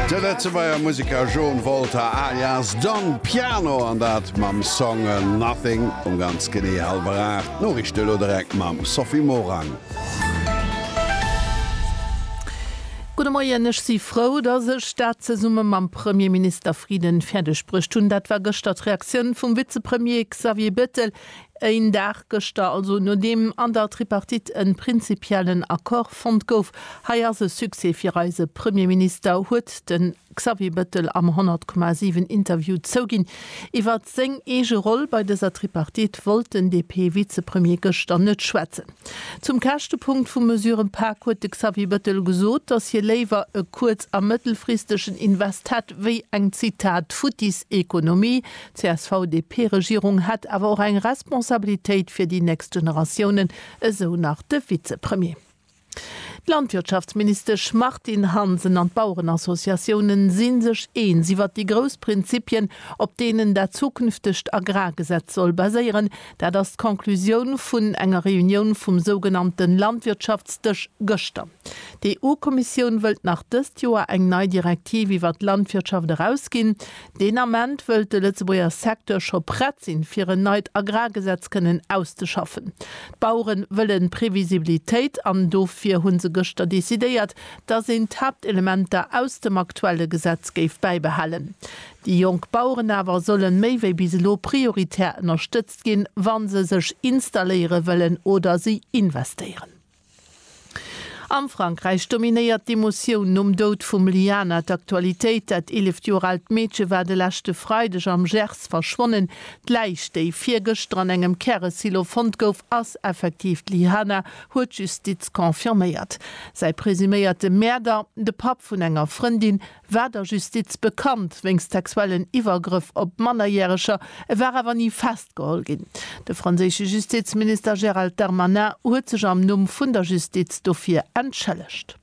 De Lëtzebuerger Museker John Volter alias Don Piano an dat mam Song Nothing um ganz genee hallwer 8. D'Noriichte elo direkt mam Sophie Morang. Gudde Moien. Ech si frou, datt ech dat zesumme mam Premierminister Frieden fäerdeg bruecht hunn. Dat war gëschter d'Reaktioun vum Vizepremier Xavier Bettel Een Dag gëschter, also nodeem an der Tripartite en prinzipiellen Accord fonnt gouf, hei ass e Succès fir eise Premierminister, huet den Xavier Bettel am 100,7 Interview zouginn. Iwwert seng eege Roll bei dëser Tripartite wollt den DP-Vizepremier gëschter net schwätzen. Zum Käschtepunkt vum Mesurepak huet de Xavier Bettel gesot, dass hie léiwer e kuerz a mëttelfristegen Invest hätt, wéi eng, Zitat, futtis Ekonomie, D'CSV-DP-Regierung hätt awer och eng Responsabilitéit fir déi nächst Generatiounen, esou nach de Vizepremier. D'Landwirtschaftsministesch Martine Hansen an d'Bauerenassociatiounen si sech eens iwwert déi grouss Prinzipien, op deenen dat zukünftegt Agrargesetz soll baséieren. Dat ass d'Conclusioun vun enger Reunioun vum sougenannte Landwirtschaftsdësch gëschter. D'EU-Kommissioun wëllt nach dëst Joer eng nei Direktiv iwwert d'Landwirtschaft erausginn. Deen Ament wëllt de Lëtzebuerger Secteur scho prett sinn, fir en neit Agrargesetz kënnen auszeschaffen. D'Bauere wëlle Previsibilitéit an dofir hu se gëschter decidéiert, datt een d'Haaptelementer aus dem aktuelle Gesetz géif bäibehalen. Déi jonk Baueren awer solle méi wéi bis elo prioritär ënnerstëtzt ginn, wa se sech installéiere wëllen oder si investéieren. Am Frankräich dominéiert d'Emotioun nom Doud vum Liana d'Aktualitéit. Dat 11 Joer aalt Meedche war de leschte Freideg am Gers verschwonnen. D'Läich, déi virgëschter an engem Käresilo fonnt gouf, ass effektiv d'Liana, huet d'Justiz confirméiert. Säi presuméierte Mäerder, de Papp vun enger Frëndin, war der Justiz bekannt wéinst sexuellen Iwwergrëff op Mannerjäreger, e war awer ni festgeholl ginn. De franséische Justizminister Gérald Darmanin huet sech am Numm vun der Justiz dofir entschëllegt.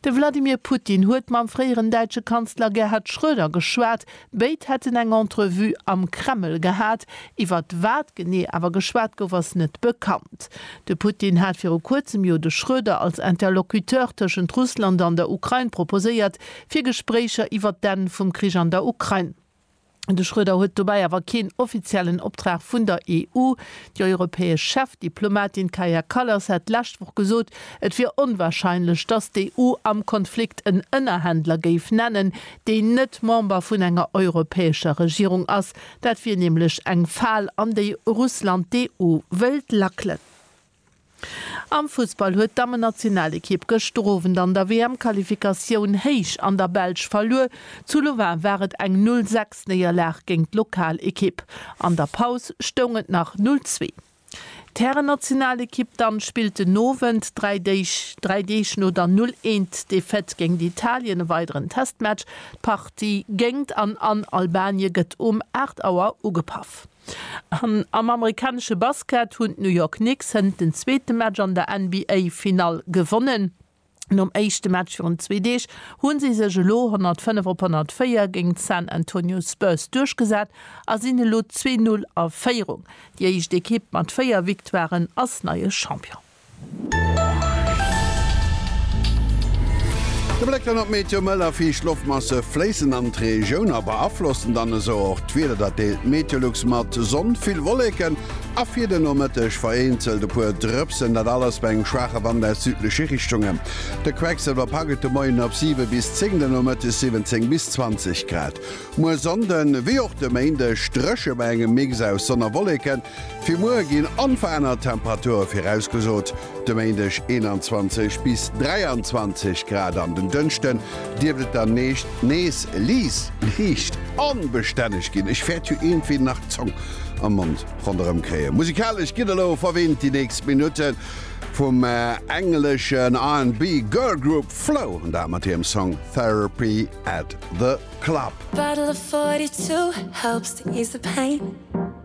De Wladimir Putin huet mam fréieren däitsche Kanzler Gerhard Schröder geschwat. Béid hätten eng Entrevue am Kreml gehat. Iwwer wat genee awer geschwat gouf, ass net bekannt. De Putin hat viru kuerzem jo de Schröder als Interlocuteur tëschent Russland an der Ukrain proposéiert, fir Gespréicher iwwer d'Enn vum Krich an der Ukrain. De Schröder huet dobäi awer keen offiziellen Optrag vun der EU. Déi europäesch Chefdiplomatin Kaja Kallas hat d'lescht Woch gesot, et wier onwarscheinlech, datt d'EU am Konflikt en Ënnerhändler géif nennen, deen net Member vun enger europäescher Regierung ass. Dat wier nämlech eng Fal, an déi Russland d'EU wëllt lackelen. Am Fussball huet d'Dammennationalekipp gëschter Owend an der WM-Qualifikatioun héich an der Belsch verluer. Zu Louvain war et eng Null sechs Néierlag géint d'Lokalekipp. An der Paus stoung et nach Null zwee. D'Härennationalekipp dann spillt den Owend, dräi Deeg dräi Deeg no der Null eent Defaite géingt Italien, e weideren Testmatch. D'Partie géingt an an Albanien gëtt um 8 Auer ugepaff. An am amerikanesche Basket hunn d'New York Knicks hënt den zweete Match an der NBA-Finall gewonnen. Nom éischte Match virun zwee Deeg hu si sech elo 105 op 104 géint d'San Antonio Spurs duerchgesat a sinn elo zwee Null a Féierung. Déi éischt Ekipp mat véier Victoiren ass neie Champion. De Bléck dann op d'Meteo, Mëll a fiicht Loftmasse fléissen an d'Regioun a beaflossen dann esou och d'Wieder. Dat deelt d'Meteolux mat, Sonn, vill Wolleken A fir de Nomëtteg vereenzelt e puer Drëpsen, dat alles bei engem schwaache Wand aus südleche Richtunge. De Quecksilwer pak et de Moien op 7 bis 10, de Nomëttes 17 bis 20 Grad. Muer Sonnde wéi och de Méindeg dréche bei engem Mix aus Sonn a Wolleken. Fir muer ginn onverännert Temperature virausgesot, de Méindeg 21 bis 23 Grad an den Dënschde dierft et dann nees liicht onbestänneg ginn. Ech wäert jo iergendwéi nach d'Zong. am Mond ronderëm kréien. Musikalesch gëtt elo verwinnt déi nächst Minutten vum engleschen R&B Girl Group Flow, an dat mat hirem Song Therapy at the Club.